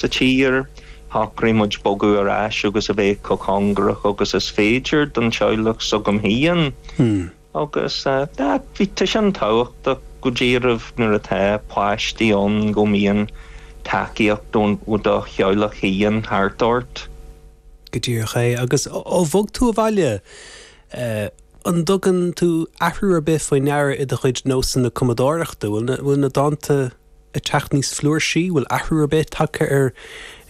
sa tír. Shocraigh muid bogadh ar ais agus a bheith chomh cóngarach agus is féidir don teaghlach s'againn féin agus tá bhí tá sin tábhachtach go díreach nuair atá páistí ann go mbíonn tacaíocht ón ó do theaghlach féin thart ort. Go díreach é. Agus ó bhog tú abhaile eh an dtugann tú athrú ar bith faoi ndeara i do chuid nósanna cumadóireachta? Bhfuil na bhfuil na dánta. ag teacht níos fliúrsí? Bhfuil athrú ar bith tagtha ar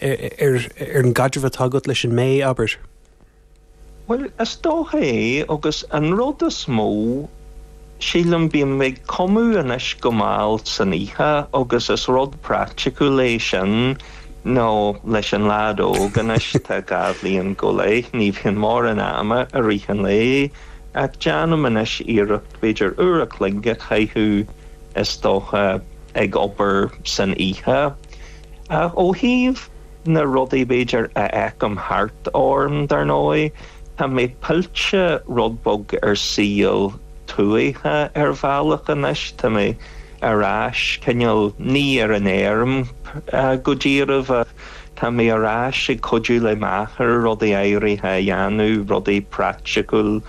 ar an gcaidreamh atá agat leis an mBé, abair? Bhuel, is dócha é agus an rud is mó, sílim, bím ag cumadh anois go mall san oíche agus is rud praiticiúil sin nó leis an leaid óg anois atá dhá bhliain go leith, ní bhíonn mórán ama i rith an lae ach déanaim anois iarracht b'fhéidir uair a chloig a chaitheamh is dócha, ag obair san oíche. Ó thaobh na rudaí b'fhéidir a fheicim thart orm, dar ndóigh, tá mé pillte rud beag ar shaol tuaithe ar bhealach anois, tá mé ar ais cineál, ní ar an fheirm go díreach, Tá mé ar ais ag cuidiú le m'athair rudaí áirithe a dhéanamh, rudaí praiticiúil,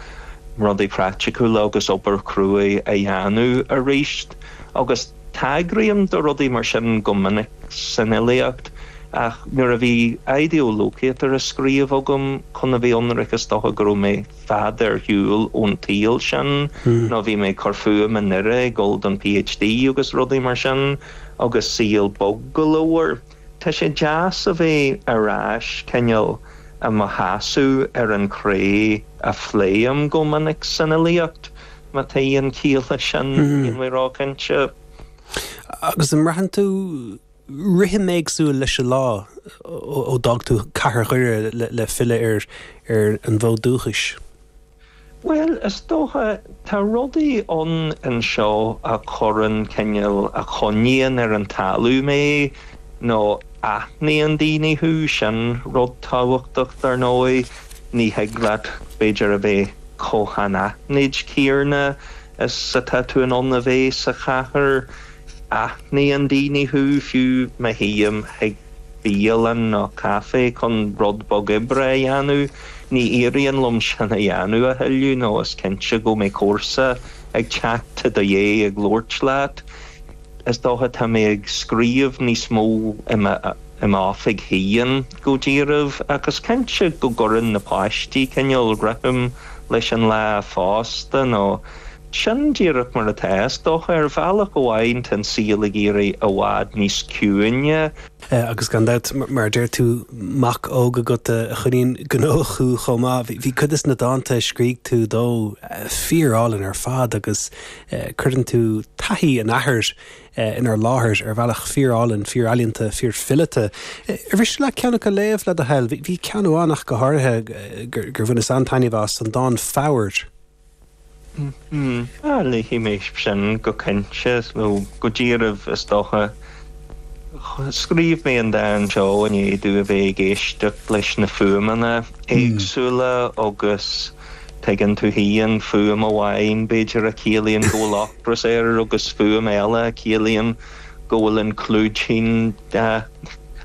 rudaí praiticiúla agus obair chruaidh a dhéanamh arís. Agus tagraím do rudaí mar sin go minic san fhilíocht ach nuair a bhí Ideo Locator á scríobh agam chun a bheith ionraic is dócha go raibh mé fad ar shiúl ón tsaol sin nó bhí mé ag cur fúm i nDoire ag dul don PhD agus rudaí mar sin agus saol bog go leor. Tá sé deas a bheith ar ais cineál i mo sheasamh ar an chré a phléim go minic san fhilíocht, má tá aon chiall leis sin, níl mé róchinnte. Agus an mbraitheann tú rithim éagsúil leis an lá ó d'fhág tú cathair Dhoire le filleadh ar an bhfód dúchais? Bhuel, is dócha, tá rudaí ann anseo a chuireann cineál a choinníonn ar an talamh mé, nó aithníonn daoine thú, sin rud tábhachtach, dar ndóigh. Ní thig leat, b'fhéidir, a bheith chomh han-aithnid, déarfá, is atá tú in ann a bheith sa chathair. Aithníonn daoine thú, fiú má théim, thig. bialann nó caifé chun rud beag oibre a dhéanamh. Ní éiríonn liom sin a dhéanamh a thuilleadh nó is cinnte go mbeidh comharsa ag teacht i do dhiaidh ag labhairt leat. Is dócha, tá mé ag scríobh níos mó i m'oifig féin go díreach ach is cinnte go gcuireann na páistí cineál rithim leis an lá fosta nó, Sin díreach mar atá, is dócha. Ar bhealach amháin, tá an saol ag éirí i bhfad níos ciúine. Sea, agus gan dabht, mar a deir tú, mac óg agat a choinníonn gnóthach thú chomh maith. Bhí cuid des na dánta a scrígh tú dó fíorálainn ar fad agus cuireann tú taithí an athar inár láthair ar bhealach fíorálainn, fíorealaíonta, fíorfileata. Ar mhiste leat ceann acu a léamh, le do thoil? Bhí ceann amháin ach go háirithe gur bhaineas an-taitneamh as, an dán 'Foghair' Léifidh mé sin go cinnte, ó go díreach is dócha. Scríobh mé an dán seo i ndiaidh domh a bheith ag éisteacht leis na fuaimeanna éagsúla agus tuigeann tú fhéin, fuaim amháin b'fhéidir a chiallaíonn go bhfuil ocras air agus fuaim eile a chiallaíonn go bhfuil an clúidín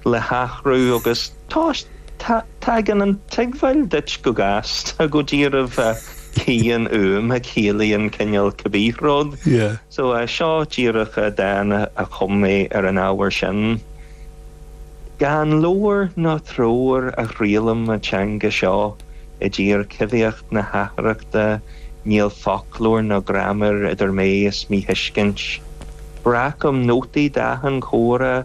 le hathrú agus. Tá, tagann an tuigbheáil duit go gasta, go díreach, cén fhuaim a chiallaíonn cineál cibé rud. Yeah, yeah. So seo díreach dán a chum mé ar an ábhar sin. Gan leabhar ná treoir a thriallaim an teanga seo i dtír choimhthíoch na hatharthachta níl foclóir ná graiméar idir mé is míthuiscint. Breacaim nótaí d'achan comhrá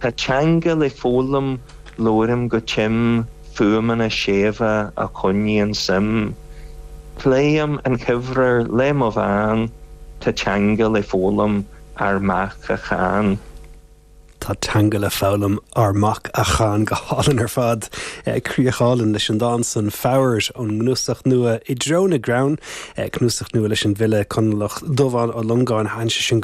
Tá teanga le foghlaim, labhraim go tim, fuaimeanna séimhe a choinníonn suim. Pléim an chomhréir le mo bhean, tá teanga le foghlaim, ár mac a chan. Tá teanga le foghlaim, ár mac a chan. Go hálainn ar fad. Críoch álainn leis an dán san. Foghair ón gcnuasach nua I dTreo na gCrann, cnuasach nua leis an bhfile Conallach Dubhán Ó Longáin. Thaitin sé sin go.